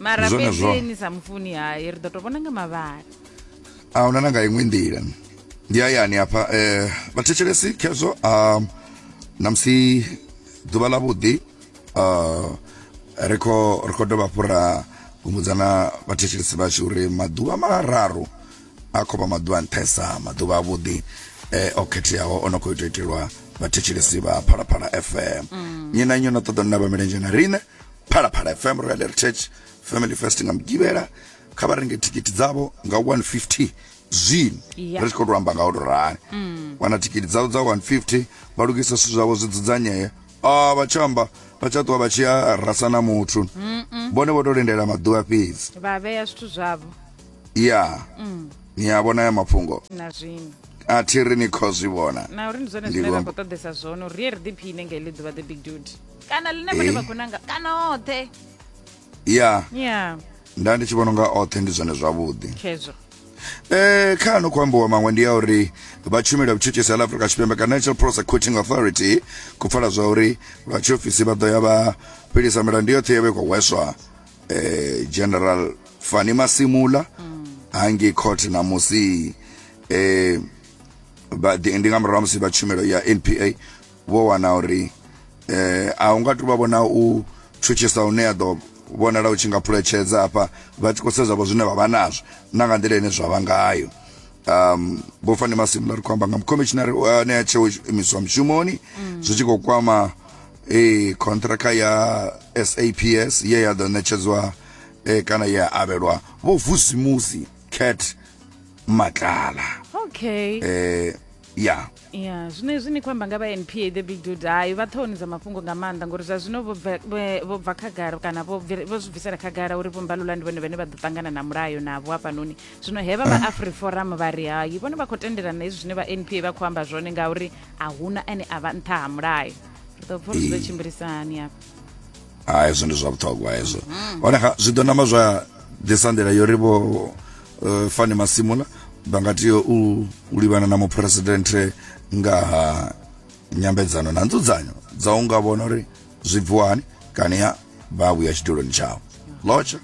mara Ndi zwone zwo. fhedzi ni sa mufuni hai ri ḓo to vhona nga mavhala a huna na nga iṅwe nḓila ndi hayani hafha eh, vhathetshelesi khezwo um, namusi ḓuvha ḽa vhuḓi uh, ri kho ri kho dovha hafhu ra humbudzana vhathetshelesi vhashu uri maḓuvha mararu a khou vha maḓuvha a nṱhesa maḓuvha a vhuḓi eh, o khetheaho o no khou ita itelwa vhathetshelesi vha phalaphala fm nnyi na nnyi o no ṱoḓa nina vha milenzhe na riṋe phalaphala fm royal heritage family fest nga mugivhela kha vha renge thikhithi dzavho nga 150 zwino Yeah. ri tshi khou tou amba nga u tou rali wana thikhithi dzavho dza 150 vha lugisa zwithu zwavho zwi dzudzanyee a vha tsha amba vha tsha ṱuwa vha tshi ya rasa na muthu vhone vho tou lindela maḓuvha fhedzi vha vhea zwithu zwavho ya ni a vhona ya mafhungo na zwino a thi ri ni khou zwi vhona na uri ndi zwone Ndi zwine ra vhamba- khou ṱoḓesa zwone uri ri ye ri ḓiphine nga iḽi ḓuvha the big dude kana ḽine vhone vha gonanga kana oṱhe ya ya nda ndi tshi vhona unga oṱhe ndi zwone zwavhuḓi khezwo Eh, kha ano khou ambiwa maṅwe ndi ya uri vha tshumelo ya vhutshutshisi ha afrika tshipembe ka national prosecuting authority ku pfala zwa uri vha tshiofisi vha ḓo ya vha fhelisa milandu yoṱhe ya vhe khou hweswa eh, general fani masimula hangi court na musi eh, vha- ndi nga murahu ha musi vha tshumelo ya npa vho wana uri eh a unga tu vha vhona u tshutshisa une ya ḓo vhonala u tshi nga phuletshedza hafha vha tshi khou sedza vho zwine vha vha nazwo na nga nḓila ine zwa vha ngayo um vho fani masimula ri khou amba nga mukhomishinari ane a tsheo imiswa mushumoni zwi tshi khou kwama eh contractor ya SAPS ye ya ḓo ṋetshedzwa eh kana ye ya avhelwa vho vusimusi cat matlala okay eh ya ya zwino hezwi ni khou amba nga vha npa the big dude hayi vha ṱhohoni dza mafhungo nga maanḓa ngori zwa zwino vho bva- vhe- vho bva khagala kana vho bvi- vho zwi bvisela khagala uri vhombalula ndi vhone vhane vha ḓo ṱangana na mulayo navho hafhanoni zwino he vha vha afriforum vha ri hayi vhone vha khou tendelana na hezwi zwine vha npa vha khou amba zwone ngauri a huna ane a vha nṱha ha mulayo ri ḓo pfa uri zwi ḓo tshimbilisahani hafha ha hezwo ndi zwa vhuṱhogwa hezwo mm-hmm. hone zwi ḓo namba zwa ḓisa nḓila yo ri vho uh, fani masimula vha nga tea u livhana na muphuresidenthe nga ha nyambedzano na nzudzanyo dza u nga vhona uri zwi bviwa hani kana ya vha vhuya tshiduloni tshawo lotsha